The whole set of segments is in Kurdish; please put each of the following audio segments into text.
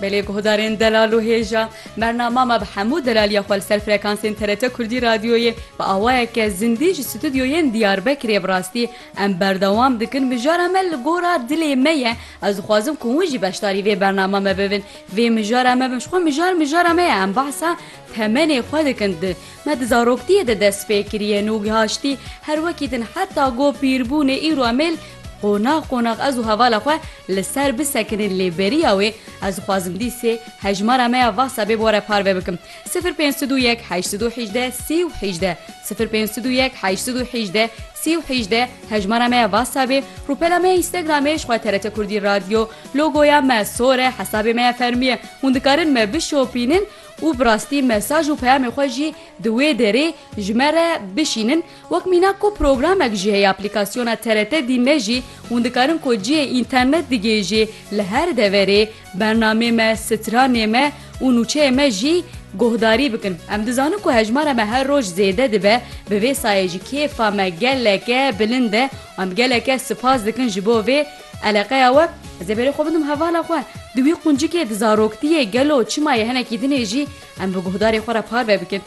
Belê guhdarên delal û hêja. Bernama me bi hemû delaliya xwe li ser frekansên TRT Kurdî Radyoyê bi awayeke zindî ji stûdyoyên Diyarbekirê bi rastî em berdewam dikin mijara me li gora dilê me ye ez dixwazim ku hûn jî beşdarî vê bernama me bibin vê mijara me bin ji xwe mijar mijara me ye em behsa temenê xwe dikin di me di zaroktiyê de dest pê kiriye nû gihaştî her wekî din heta go pîrbûnê îro em ê Qonax qonax ez û hevala xwe li ser bisekinên lê beriya wê ez dixwazim dîsê hejmara me ya WhatsAppê bi we re parve bikim, sifir pênc sed û yek heşt sed û hîjdeh sî û hîjdeh, sifir pênc sed û yek heşt sed û hîjdeh sî û hîjdeh hejmara me ya WhatsAppê, rûpela me ya Instagramê ji xwe TRT Kurdî Radio, logoya me sor e, hesabê me ya fermî ye, hûn dikarin me bişopînin û bi rastî mesaj û peyamê xwe jî di wê derê ji me re bişînin. Wek mînak ku programek jî heye aplîkasyona TRT dîme jî hûn dikarin ku cihê înternet digihêjê li her deverê bernamê me, stranê me û nûçeyê me jî guhdarî bikin. Em dizanin ku hejmara me her roj zêde dibe bi vê sayê jî kêfa me geleke bilind e û em geleke sipas dikin ji bo vê eleqeya we. Ez ê berê xwe bidim hevala xwe di wî quncikê di zaroktiyê gelo çima yê hinekî dinê jî em bi guhdarê xwe re parve bikin.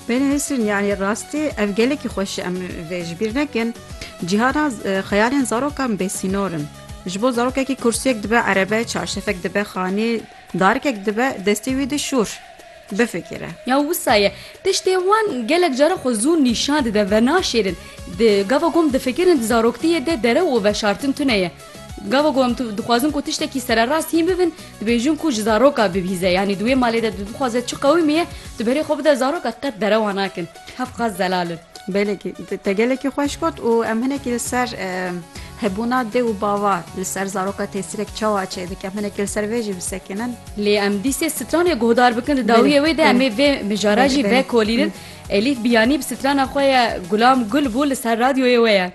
Peyre Nesrîn, Yanî rastî ev gelekî xweş e. Em vê ji bîr nekin. Cîhana xeyalên zarokan bêsînor in. Ji bo zarokekî kursiyek dibe erebe, çarşefek dibe xanî, darikek dibe destê wî di şûr. Bifikire. Ya wisa ye. Tiştê wan gelek caran xwe zû nîşan dide, venaşêrin. Di gava kom difikirin di zaroktiyê de derew û veşartin tune ye. Gava ku em dixwazin ku tiştekî sererast hîn bibin, dibêjin ku ji zaroka bibîze. Yanî di wê malê de tu bixwaze çi qewimî ye, tu berê xwe bide zaroka qet derewa nakin. Hev qas zelal in. Belekî te gelekî xweş got û em hinekî li ser hebûna dê û bava li ser zaroka tesîrek çawa çêdike em hinekî li ser vê jî bisekinin. Lê em dîsê stranê guhdar bikin di dawiyê wê de em ê vê mijara jî vekolînin. Elîf Biyanî bi strana xwe ye Gulam Gul bû li ser radyoyê we ye.